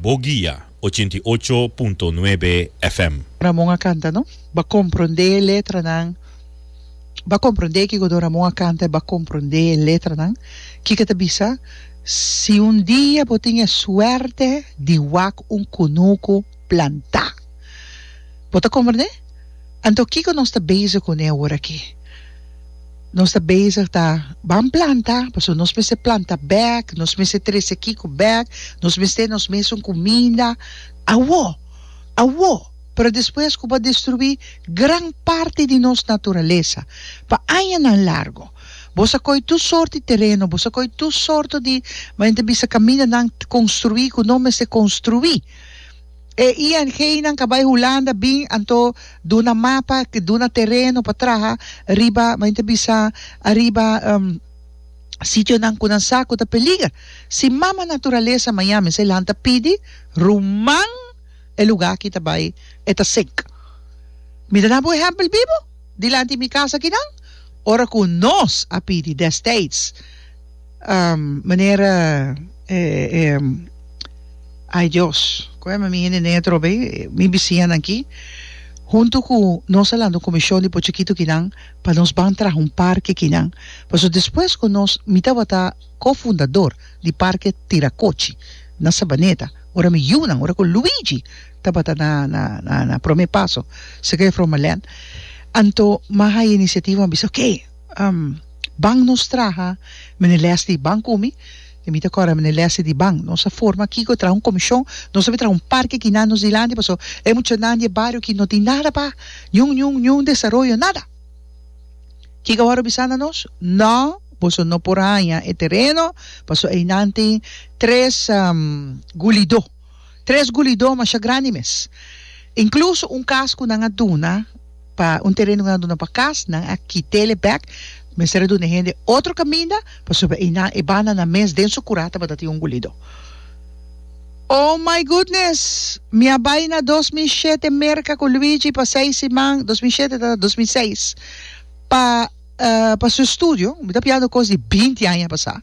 Bo guia, ochenta i ocho punto nuebe FM. Ramon a kanta no ba komprondé e letranan ba komprondé kiko don Ramon a kanta e ba komprondé e letranan kiko ta bisa si un dia bo tin e suerte di wak un kunuku plantá bo ta komprondé anto kiko nos ta bezig kuné orakí. Nos ta bezig ta ban planta, pasobra nos mester planta bek, nos mester trese kiko bek, nos mester nos mes un kuminda, awo, awo, pero despues ku bo a destruí gran parti di nos naturalesa pa añanan largu. Bos a koi tur sort di tereno, bos a koi tur sorto di, men ta bisa kamindanan, konstruí ku no mester konstruí. E ING nan ka bai Hulanda bin anto duna mapa, ke duna tereno pa traha riba, men ta bisa, ariba sitionan ku nan sa ku ta peliger. Si mama naturalesa Miami sa e lanta pidi ruman e lugá aki ta bai e ta sek. Mi ta da bo ehèmpel bibu dilanti mi kas akinan, ora ku nos a pidi destids, Um, manera e, e, ay Dios, koe mi hende nea trobe, eh, mi bisiñanan aki, huntu ku nos a lanta un komishon di pochikito kinan pa nos ban traha un parke kinan. Paso despues ku nos, mi tabata ko-fundador di Parke Tirakochi na Sabaneta, ora mi yunan, ora ku Luigi tabata na, na, na, na prome paso, Sergey Frommelen, anto mi a haya inisiativa, mi a bisa, oke. Ban nos traha mene les di ban ku mi e mi ta kòrda mene lèsnan di ban nos a forma kiko traha un komishon nos a bin traha un parke kinan nos dilanti pasobra e muchanan di e bario aki no tin nada pa niun niun niun desaroyo nada kiko a wòrdu bisanda nos nò boso no por haña e tereno pasobra einan tin tres gulidó. Tres gulidó masha grandi mes. Incluso un cas cu nan a duna pa, un tereno cu nan a duna pa cas, nan a kit'ele bek, mester a duna e hende otro caminda pasobra einan, e bandanan mes den su cura tabata tin un gulidó. Oh my goodness! Mi a bay na dos mil shete Merca cu Luigi pa seis siman, dos mil shete ta dos mil seis, pa, pa su estudio, mi ta piando cos di binti aña pasá.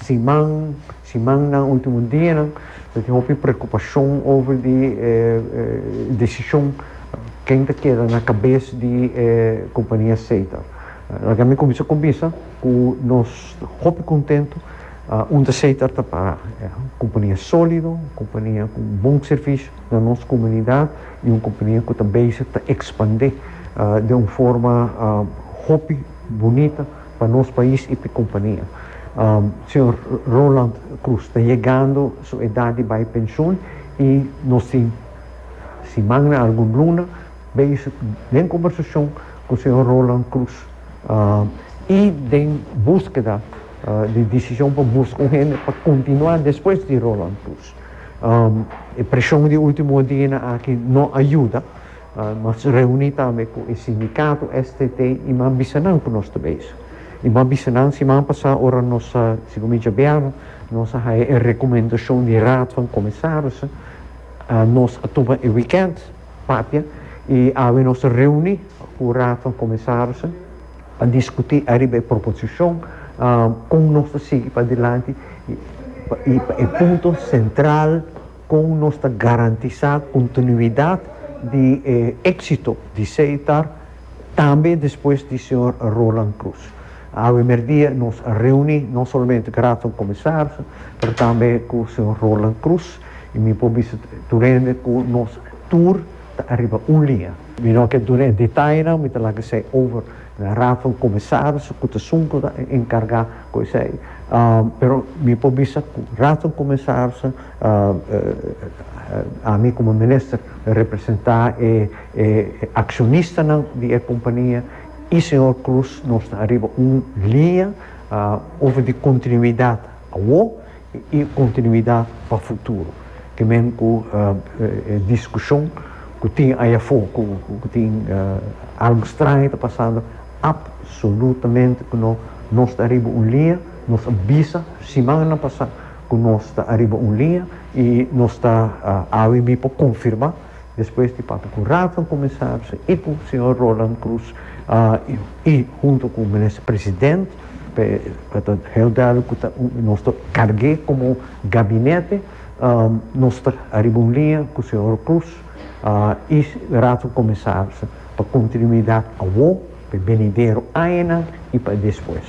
Siman, simannan, ultimo dianan ta tin hopi preocupacion over di e decision ken ta keda na cabes di e compania Seta. Laga mi cuminsa cumbisa cu nos ta hopi contento unda Seta ta para. Compania solido, compania cu bon servicio na nos comunidad y un compania cu ta bezig ta expande den un forma hopi bunita. pa nos pais y pa e compania. Señor Roland Cruz ta yegando su edad di bay pensioen y nos tin simannan, algun luna, bay den conversacion cu señor Roland Cruz y den busqueda di decision pa busca un hende pa continua despues di Roland Cruz. E presion di ultimo dianan aki no a yuda. Nos reuni tambe cu e sindicato STT y m'a bisa nan cu nos ta bezig. Y m'a bisa nan siman pasa ora nos a, segun mi djabianan, nos a haya e recomendacion di Raad van Commissarissen, nos a tuma e weekend papia y awe nos ta reuni cu Raad van Commissarissen pa discuti ariba e proposicion con nos ta sigui padilanti y pa e punto central. Kon nos ta garantisá kontinuidat di e éksito di Seitar tambe despues di señor Roland Cruz? Awe mierdia nos a reuní no solamente ku Raad van Commissarissen, pero tambe ku señor Roland Cruz i mi por bisa tur hende ku nos tur ta ariba un liña. Mi no ke duna e detainan, mi ta laga esei over na Raad van Commissarissen ku ta esun ku ta enkargá ku esei, pero mi por bisa ku Raad van Commissarissen, Ami komo minister representá e akshonistanan di e kompania i señor Cruz nos ta ariba un liña over di kontinuidat awor i kontinuidat pa futuro te men ku e diskushon ku tin aya afó ku tin algu straño ta pasando apsolutamente ku no nos ta ariba un liña nos a bisa simannan pasá. ku nos ta ariba un liña i nos ta awe mi por konfirmá despues di papia ku Raad van Kommisarissen i ku señor Roland Croes i huntu ku Minister President p'e ta heel duidelijk ku ta nos ta karg'é komo Gabinete nos ta ariba un liña ku señor Croes i Raad van Kommisarissen pa kontinuidat awo p'e benidero añanan i pa e despues.